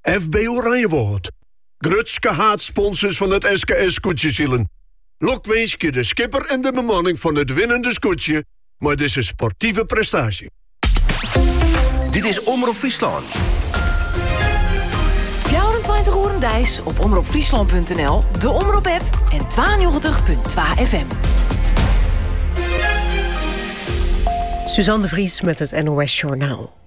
FB Oranjewâld. Grutske haadsponsors fan it SKS Skûtsjesilen. Lokwinskje de skipper en de bemanning fan it winnende skûtsje mei dizze sportive prestaasje. Dit is Omrop Fryslân. 24 oeren deis op omropfryslan.nl, de Omrop app en 92.2 FM. Suzanne de Vries met het NOS Journaal.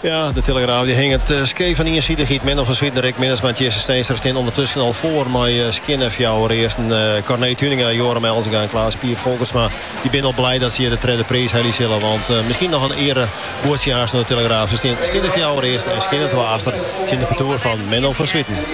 Ja, de telegraaf dy hinget skeef fan iensidichheid. Menno van Zwieten, Rick Minnesma en Tjisse Steenstra stean ûndertusken al foar mei skjinne fjouwer earsten. Corné Tuinenga, Yoram Elzinga en Klaas Pier Folkertsma dy binne al blij dat se hjir de tredde priis helje sille. Want miskien noch in earebuordsje oan de telegraaf. Se stean skjinne fjouwer earsten en skjinne twa achter tsjin de partoer fan Menno van Zwieten.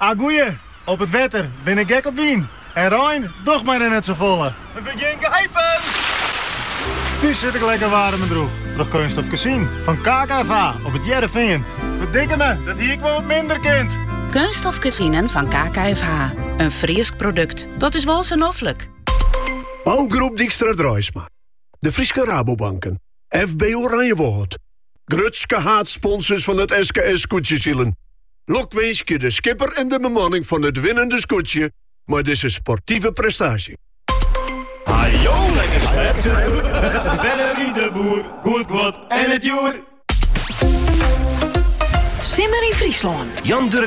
A goeie, op it wetter bin ik gek op wyn en rein docht my der net safolle. It begjint geipen! Thús sit ik lekker waarm en droech troch keunststof kezinen fan KKFH op It Hearrenfean. Ferdikkeme, dat hie ik wol wat minder kind! Keunststof kezinen fan KKFH, in Frysk produkt, dat is wol sa noflik! Bouwgroep Dijkstra Draisma, De Fryske Rabobanken, FB Oranjewâld, Grutske haadsponsors fan it SKS Skûtsjesilen. Lokwinskje de skipper en de bemanning fan it winnende skûtsje mei dizze sportive prestaasje. Hajo lekker slepten. De bellen wie de boer, goed god en het joer. Simmer in Fryslân. Jan Durk